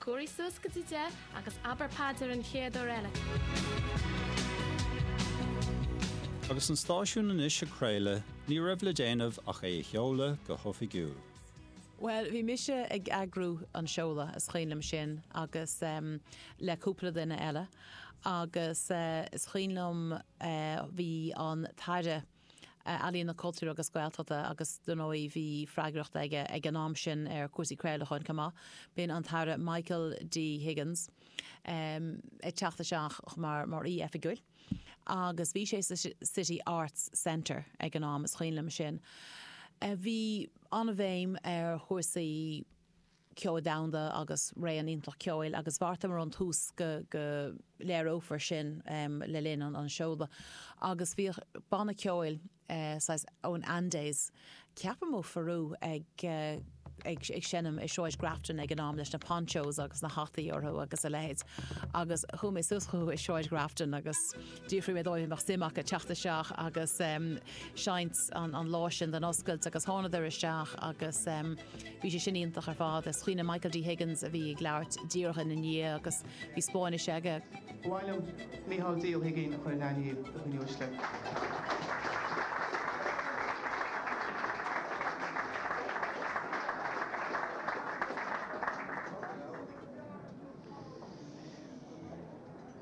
Cóirigh suas go dtí deich agus abair paidir an chéad uair eile. Agus an stáisiún anois ag craoladh, ní raibh le déanamh ach é a sheoladh go hoifigiúil. Bhuel, bhí mise ag eagrú an seoladh, is cuimhin liom sin, agus em, le cúpla duine eile. Agus eh, is cuimhin liom eh, bhí an tAire. Ealaíon, Cultúir agus Gaeltachta agus dar ndóigh bhí freagracht aige ag an am sin ar chúrsaí craolacháin chomh maith. B'in an tAire Michael D. Higgins ag teacht isteach mar mar aoi oifigiúil agus bhí sé sa City Arts Centre ag an am, is cuimhin liom sin. Bhí an-bhéim ar chúrsaí. ceoil domhanda agus réimse iontach ceoil agus bheartaíomar ón tús go léireofaí sin le linn an seoladh agus bhíodh banna ceoil saghas ón Andes ceapaim ó Pheru ag seinm i Sráid Grafton ag an am leis na ponchos agus na hataí orthu agus a leithéid agus chuaigh mé suas chucu i Sráid Grafton agus d'fhiafraigh mé díobh an mbeadh suim acu teacht isteach agus seinnt an lá sin don oscailt agus thánadar isteach agus. Bhí sé sin iontach ar fad is cuimhin liom Michael D Higgins a bhí ag labhairt díreach ina ndiaidh agus bhí Spáinnis aige. Ba mhaith liom Micheál D Ó hUiginn a chur in aithne do dhaoine uaisle.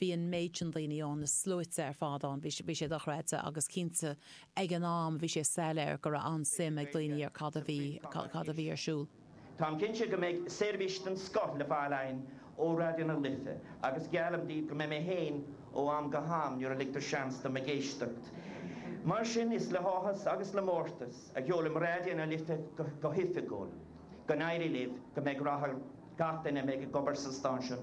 Bhí an méid sin daoine ann, na sluaite ar fad ann, bhí sé dochreidte agus cinnte ag an am bhí sé soiléir go raibh an-suim ag daoine ar cad a bhí, cad a bhí ar siúl. Táim cinnte go mbeidh seirbhís den scoth le fáil againn ó Raidió na Life agus geallaim daoibh go mbeidh mé féin ó am go ham nuair a ligtear seans dom ag éisteacht libh. Mar sin is le háthas agus le mórtas a sheolaim Raidió na Life go hoifigiúil. Go n-éirí libh, go mbeidh rath ar gach duine a bheidh ag obair sa stáisiún.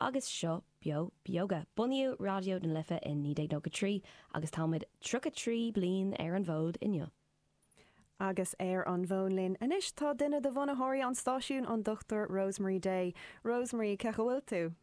Agus seo Beo Beoga. Bunaíodh Raidió na Life i 1993 agus táimid tríocha trí bliain ar an bhfód inniu. Agus ar an bhfón linn anois tá duine de bhunaitheoirí an stáisiún, an Dr. Rosemary Day. Rosemary, cén chaoi a bhfuil tú?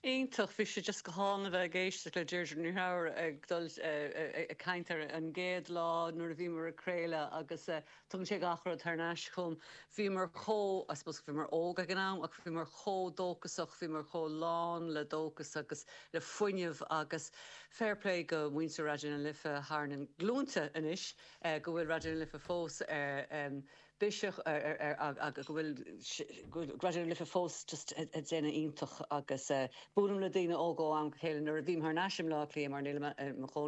Iontach, bhí sé just go hálainn a bheith ag éisteacht le Deirdre Ní Threabhair ag dul, ag caint ar an gcéad lá nuair a bhíomar ag craoladh agus Tugann sé gach rud thar n-ais chugam. Bhíomar chomh, I suppose bhíomar óg ag an am, ach bhíomar chomh dóchasach, bhíomar chomh lán le dóchas agus le fuinneamh agus fair play go muintir Raidió na Life thar na glúinte anois go bhfuil Raidió na Life fós ar bisiúch agus go bhfuil Raidió na Life fós just ag déanamh iontach agus buailim le daoine óga ó am go chéile nuair a bhím thar n-ais i mBleá Cliath mar nílim i mo chónaí